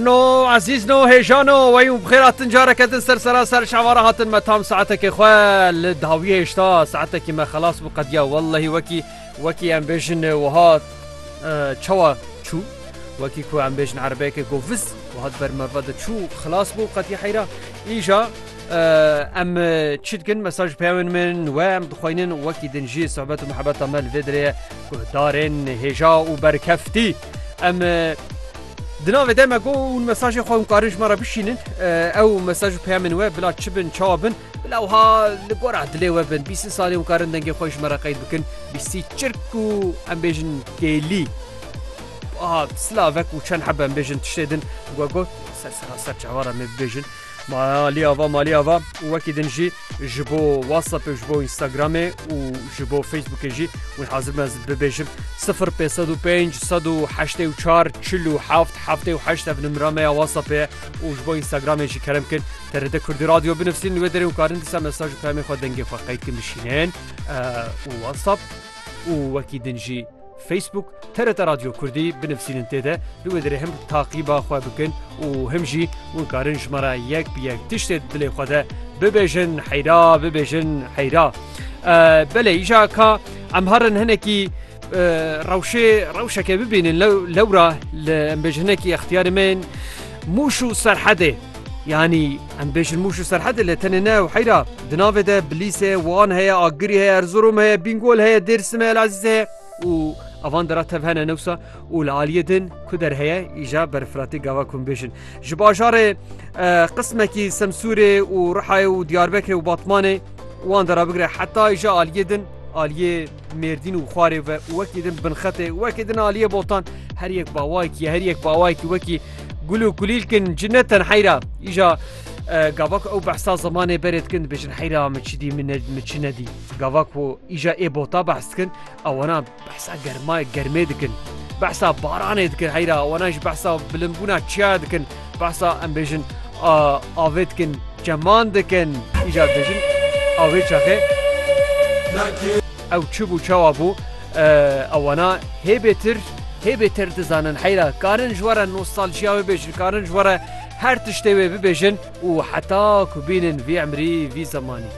No ezîz no hêjan o wey û bi xêr hatin careke din ser sera ser şevara hatin me tam saetekê xwe li dawî hêşta saetekî me xelas bû qediya wellehî wekî wekî em bêjin wiha çawa çû wekî ku em bêjin erebeyekê ku viz wiha di ber merve de çû xelas bû qediya heyra îja em çi dikin mesaj peyawên min we em dixweynin wekî din jî sohbet û mehebeta me li vê dirêye ku darên hêja û berkeftî em Di navê de me got hûn mesajên xwe hûn karin ji me re bişînin. Ew mesaj û peyamên we bila çi bin, çawa bin, bila wiha li gora dilê we bin. Bîst salî hûn karin dengê xwe ji me re qeyd bikin. Bîstî çirk û em bêjin kêlî. Aha, silavek û çend hebe em bêjin tiştê din. We got, ser seraser çavara me bibêjin. Ma alî ava malî ava û wekî din jî ji bo WhatsAppê û ji bo Instagramê û ji bo Facebookê jî win hazir bim ez bibêjim sifir pê sed û pênc sed û heştê û çar çil û heft heftê û heşt ev nimira me ya WhatsAppê ye û ji bo Instagramê jî kerem kin TRT Kurdî Radio binivîsîn li wê derê û karin dîsa mesaj û peyamên xwe dengê xwe qeyd kin bişînin û WhatsApp û wekî din jî Facebook, TRT Radio Kurdî binivîsînin tê de li wê dirê him taqîba xwe bikin û him jî hûn karin ji me re yek bi yek tiştê di dilê xwe de bibêjin heyra bibêjin heyra. Belê îja ka em herin hinekî rewşê rewşeke bibînin lewra li embêjinekî extiyarê me mûş û serhedê. Yanî em bêjin Mûş û Serhedê lê tenê ne ew heyra. Di navê de Bilîs heye, Wan heye, Agirî heye, Erzurum heye, Bingol heye, Dêrsim heye, Elezîz heye û avan de re tev hene ne wisa û li aliyê din ku der heye îja berfiratê gava ku em bêjin. Ji bajarê eh, qismekî Semsûrê û Rihayê û Diyarbekirê û Batmanê wan de rabigire heta îja aliyê din aliyê Mêrdîn û xwarê ve wekî din binxetê wekî din aliyê botan her yek bawayekî her yek bawayekî wekî gul û kulîlkin ci ne tenheyra îja gavak ew behsa zimanê berê dikin dibêjin heyra min çi dî min min çi nedî gavak û îja ê bota behs dikin ewana behsa germayê germê dikin behsa baranê dikin heyra wana ji behsa bilinbûna çiya dikin Behsa em bêjin avê dikin çeman dikin îcar dibêjin avê çaxê ew çi bû çawa bû ewana hê bêtir hê bêtir dizanin heyra karin ji were nostaljiya wê bêjin karin ji were her tiştê wê bibêjin û heta ku bînin vî emrî vî zemanî.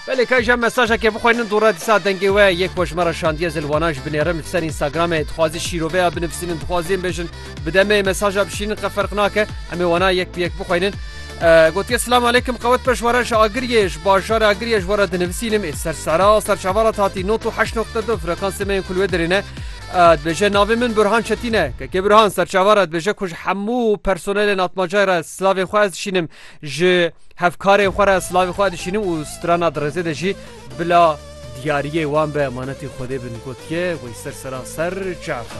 Belê ka jîya mesajekê bixwînin dû re dîsa dengê we yê ku ji me re şandiye zilwanan jî binêrim li ser Instagramê dixwazî şîroveya binivîsînin dixwazî em bêjin bi demê mesaja bişînin qe ferq nake em ê wana yek bi yek bixwînin Gotiye Silam aleykum qewet peş were ji Agiriyê ji bajarê Agiriyê ji we re dinivîsînim ê ser sera ser çava re hatî not û heşt noqte du frekansê me yên ku li wê dirê ne dibêje navê min Burhan Çetîn e kekê Burhan ser çava re dibêje ku ji hemû personelên atmacayê re silavên xwe ez dişînim ji Hevkarên xwe re silavê xwe dişînim û strana di rêzê de jî bila diyariyê wan be emanetî Xwedê bin gotiye, Wey ser sera ser çi efa.